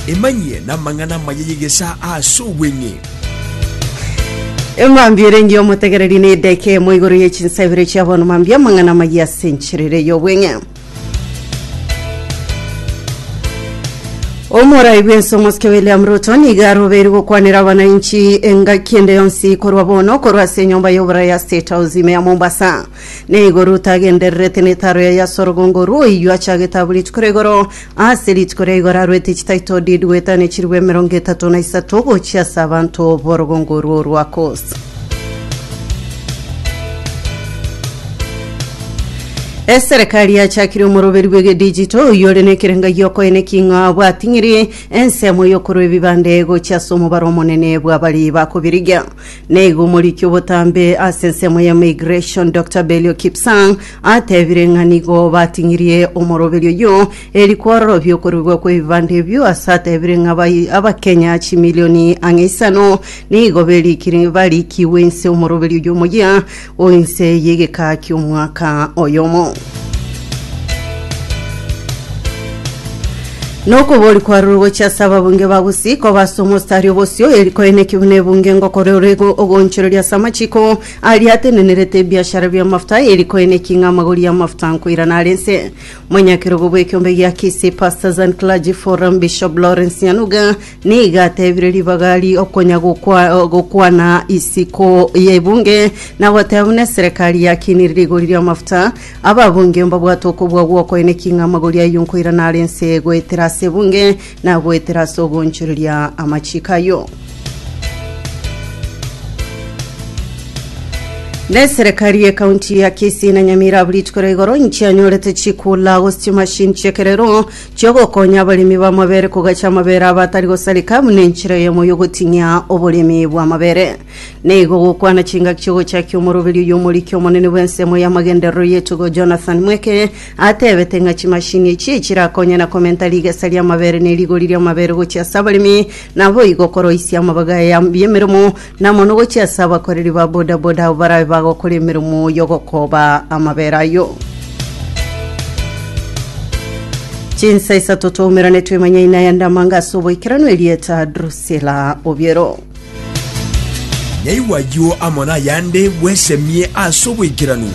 Emanyie namang'ana amaya y'egesaa aase obweng'e. Emambia erenge y'omotegereri na edeka eyemo igoro ye chinsa ibere chia bono mambia amang'ana amaya ase enchera ere y'obweng'e. Omorai bw'ense omosike William Ruto nigo arobeirwe gokwanera abanainchi engaki ende yonsi korwa bono korwa ase enyomba y'oboraya ya State House ime ya Mombasa. Nigo Ruta agendererete netaro yaye ase orogongo rw'oyio achagete abwo rituko ria igoro. Ase rituko ria igoro arwete chitaito didueta ne chirwa emerongo etato na isato gochia ase abanto b'orogongo orwo rwa Kosi. Eserekari yachakire omoroberi bw'egedijito oyio ore nekerenga giokoina eking'ao abwating'iri ensemo y'okorwa ebibande gochia ase omobaro omonene bw'abari bakobirigia. Naigo omoriki obotambe ase ensemo ya Migration Doctor Belio Kipsang atebire ng'a nigo bating'irie omoroberi oyio eri kwarora biokoruigwa kw'ebibanda ebio ase atebire ng'a bai abakenya chimilioni ang'e isano nigo berikiri barikigwe inse omoroberi oyio omoyia O inse y'egekaa ki'omwaka oyomo. Nokobori kwarure gochia ase ababunge ba Gusii koba ase omostari obosio, eri koeneki buna ebunge ngokora ore ogoonchoreria ase amachiko aria atenenerete ebiashara bi'amafuta, eri koeneki ng'a amagori y'amafuta nkoirana are nse. Monyakerogo bw'ekeombe gia Kisii Pastors and Clergy Forum, Bishop Lawrence Nyanuga, Nigo ateebire ribaga ri'okonya gokwa- gokwana isiko y'ebunge, na goteeba buna eserekari ya Kini rigori ri'amafuta, ababunge mbabwate okobua gw'okoinekia ng'a amagori ayio nkoirana are ense goetera ase ebunge, na goetera ase ogoonchoreria amachiiko ayio. Na eserekari ye county ya Kisii na Nyamira abu rituko ria igoro inchianyorete chikula gose chimashini chi'ekerero, chi'ogokonya abaremi b'amabere kogacha amabere abo atari gosareka buna enchera eyemo y'ogoting'ia oboremi bw'amabere. Na igo gokwana chingaki chi'ogochakia omoroberio y'omoriki omonene bw'ensemo y'amagenderero y'etugo Jonathan Mweke atebete ng'a chimashini echi echirakonye na komenta rigesa ri'amabere ne rigori ri'amabere gochia ase abaremi naboigo koroisia amabaga aya y'emeremo Na mono gochia ase abakoreri ba bodaboda abo barabe bagokora emeremo y'ogokoba amabere ayio. Chinsa isato twaumerane twemanya ina ya ndamanga ase oboikeranu erieta Drusilla Obiero. Naigwa ayio amo nayande bwesemie ase oboikeranu.